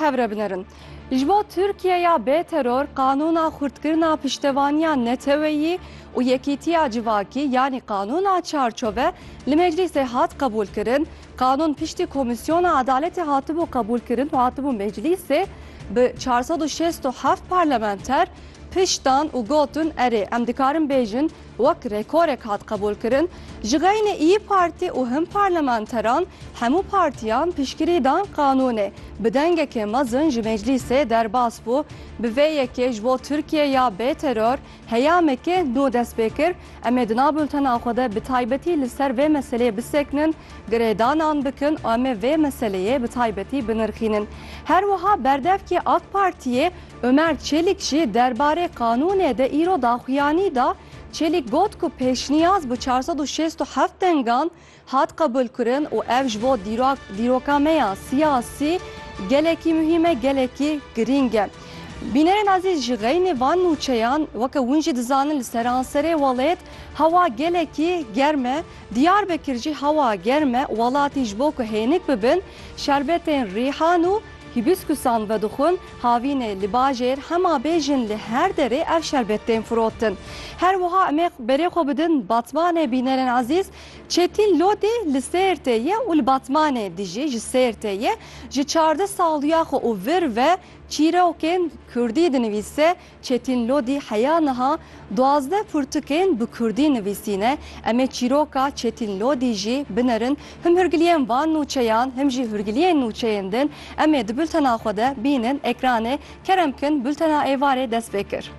Hev re binerin. Ji bo Tirkiyeya bê teror qanûna xurtkirina piştevaniya neteweyî û yekîtiya civakî yanî qanûna çarçove li meclîsê hat qebûlkirin. Qanûn piştî komîsyona edaletê hatibû qebûlkirin û hatibû meclîsê bi çar sed û şêst û heft parlamenter pişt dan û gotin erê em dikarin bêjin Wek rêkorek hat qebûlkirin, ji xeynê îyi Partî û hin parlamenteran hemû partiyan piştgirî dan qanûnê, bi dengekê mezin ji meclîsê derbas bû, bi vê yekê ji bo Tirkiye ya bê teror heyamekê nû dest pê kir. Em ê di nav bultena xwe de bi taybetî li ser vê meseleyê bisekinin, girêdanan bikin û em ê vê meseleyê bi taybetî binirxînin. Her wiha berdevkê AK Partiyê, Ömer Çelik jî derbarê qanûnê de îro daxuyanî da, Çelik got ku pêşniyaz bi çar sed û şêst û heft dengan hat qebûlkirin û ev ji bo dîroka me ya siyasî gelekî muhîm e, gelekî girîng e. Bînerên azîz ji xeynê van nûçeyan weke hûn jî dizanin li seranserê welêt hewa gelekî germ e. Diyarbekir jî hewa germ e, welatî ji bo ku hênik bibin şerbetên rîhan û Hîbîskûsan vedixwin havînê li bajêr hema bê jin li her derê ev şerbet tên firotin. Her wiha em ê berê xwe bidin Batmanê bînerên ezîz Çetîn Lodî li Sêrtê ye û li Batmanê dijî ji Sêrtê ye ji çardeh saliya xwe û vir ve çîrokên kurdî dinivîse Çetîn Lodî heya niha duwazdeh pirtûkên bi kurdî nivîsîne. Em ê çîroka Çetîn Lodî jî binerin. Him hûrgiliyên van nûçeyan him jî hûrgiliyên nûçeyên din em ê di bultena xwe de bînin ekranê. Kerem kin bultena êvarê dest pê kir.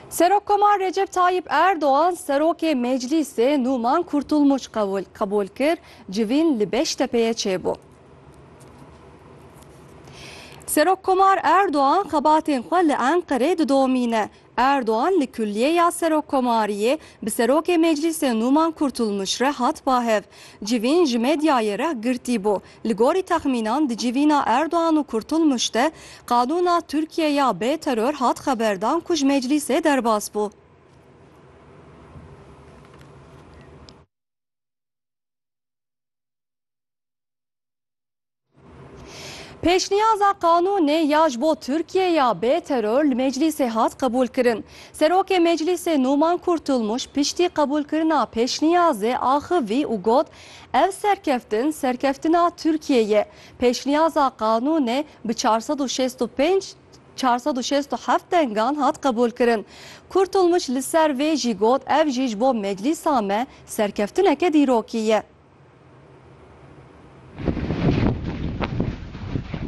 Serokkomar Recep Tayyip Erdogan serokê Meclîsê Numan Kurtulmuç qebûl kir, civîn li Beştepeyê çêbû. Serokkomar Erdogan xebatên xwe li Enqerê didomîne. Erdogan li Kulliyeya Serokkomariyê bi serokê Meclîsê Numan Kurtulmuç re hat bahev. Civîn ji medyayê re girtî bû. Li gorî texmînan di civîna Erdogan û Kurtulmuş de qanûna Tirkiye ya bê teror hat xeberdan ku ji meclîsê derbas bû. Pêşniyaza qanûnê ya ji bo Tirkiye ya bê teror li meclîsê hat qebûlkirin. Serokê meclîsê Numan Kurtulmuş piştî qebûlkirina pêşniyazê axivî û got Ev serkeftin serkeftina Tirkiyê ye. Pêşniyaza qanûnê bi çar sed û şêst û pênc çar sed û şêst û heft dengan hat qebûlkirin. Kurtulmuç li ser vê jî got ev jî ji bo meclîsa me serkeftineke dîrokî ye.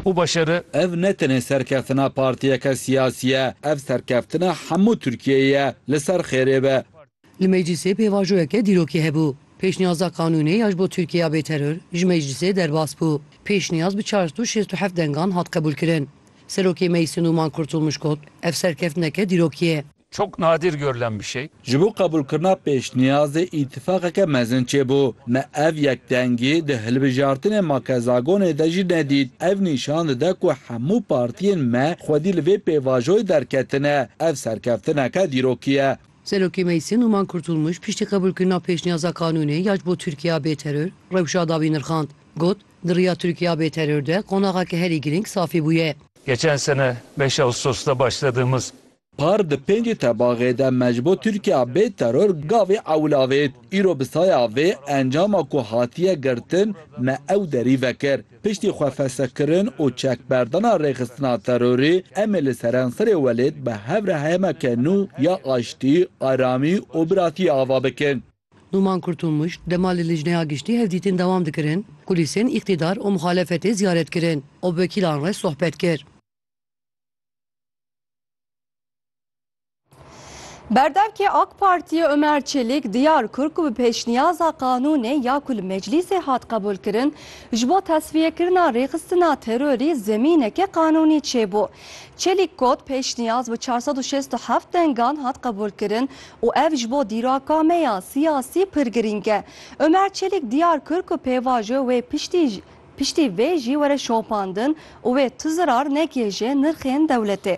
û başere. Ev ne tenê serkeftina partiyeke siyasî ye, ev serkeftina hemû Tirkiyeyê ye. Li ser xêrê be. Li meclîsê pêvajoyeke dîrokî hebû. Pêşniyaza qanûnê ya ji bo Tirkiyeya bê teror ji meclîsê derbas bû. Pêşniyaz bi çar sed û şêst û heft dengan hat qebûlkirin. Serokê Meclîsê Nûman Kurtulmuş got, Ev serkeftineke dîrokî ye. Çok nadir görülen bir şey. Ji bo qebûlkirina pêşniyazê îtîfaqeke mezin çêbû. Me ev yekdengî di hilbijartinên makezagonê de jî nedît. Ev nîşan dide ku hemû partiyên me xwedî li vê pêvajoyê derketine. Ev serkeftineke dîrokî ye. Serokê Meclîsê Numan Kurtulmuş piştî qebûlkirina pêşniyaza qanûnê ya ji bo Tirkiyeya bê teror, rewşa dawî nirxand. Got, Di riya Tirkiyeya bê teror de qonaxeke herî girîng safî bûye. Geçen sene beş Ağustos de başladığımız. Par di pêncî tebaxê de me ji bo Tirkiyeya bê teror gavê ewil avêt. Îro bi saya vê encama ku hatiye girtin me ew derî vekir. Piştî xwefesekirn û çekberdana rêxistina terorê, em ê li seranserê welêt bi hev re hemeke nû ya aştî, aramî û biratiyê ava bikin. Nûman Kurtulmuş, dema li Lijneya Giştî hevdîtin dewam dikirin, kulîsên îktîdar û muxalefetê ziyaret kirin û bi wekîlan re sohbet kir. Berdevkê AK Partiyê Ömer Çelik diyar kir ku bi pêşniyaza qanûnê ya ku li meclîsê hat qebûlkirin ji bo tesfiyekirina rêxistina terorî zemîneke qanûnî çêbû. Çelik got, Pêşniyaz bi çar sed û şêst û heft dengan hat qebûlkirin û ev ji bo dîraka me ya siyasî pir girîng e. Ömer Çelik diyar kir ku pêvajo wê piştî piştî vê jî were şopandin û wê tu zirar nekê ji nirxên dewletê.